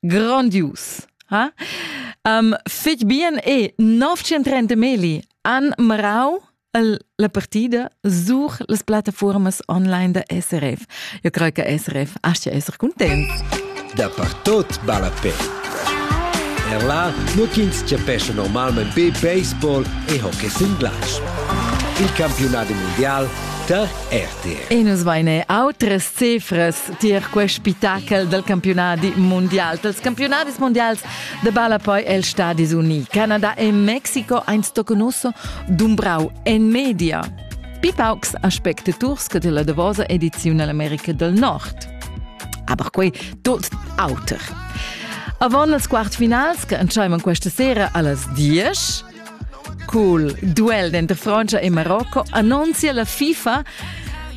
Grandius. Ha? Um, fetg bien e 930 meli han marau la partida sur las plattaformas online da SRF. Eu creo che SRF aschia esser content. Dapertot balla pe. Er là, nur ch'ins cepesce normalment be baseball e hockey singlash. Il campionat mundial tar RTR. E nus vaine autres cifras tier quest spitachel del campionadi mondial. Dels campionadis mondials de balla poi els Stadis Uniti. Canada e Mexico ein stoconoso dumbrau en media. Pipaucs aspecte turske della davosa edizione America del Nord. Aber quei tot auter. Avon las quartfinals, che entscheivan questa sera allas 10, Cul duel denter Frantscha e Marocco annunzia la FIFA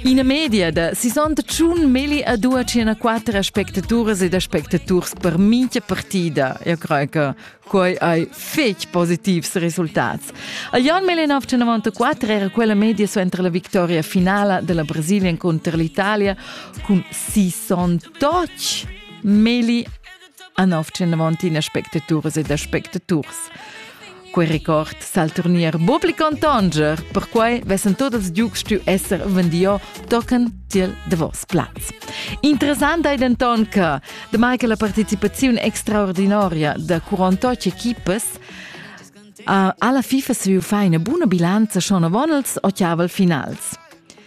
ina media da 61 milli a 204 aspectaturas ed aspectaturs per mintga partida. Eu crei che quei ei fetg positivs resultats. A Jan 1994 era quella media suenter la vittoria finala della Brasilian contro l'Italia cun 68 milli a nov tschenavant in aspectaturas ed aspectaturs. Quei record sal turnier publicon tanger, perquai vessen tot els giugs stu esser vendio tochen tiel davos plaz. Interessant ei denton che, demai che la participaziun extraordinaria da 48 equipas alla FIFA se fa una buona bilanza schon avon els occhiaval finals.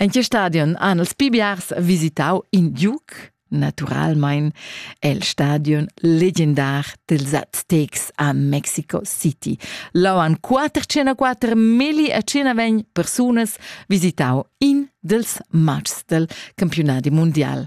En che stadion han els pli biars visitau in giug? Naturalmein el stadion legendar dels Aztecs a Mexico City. Là han quater 104 meli a 120 persunas visitau in dels matchs del campionati mondial.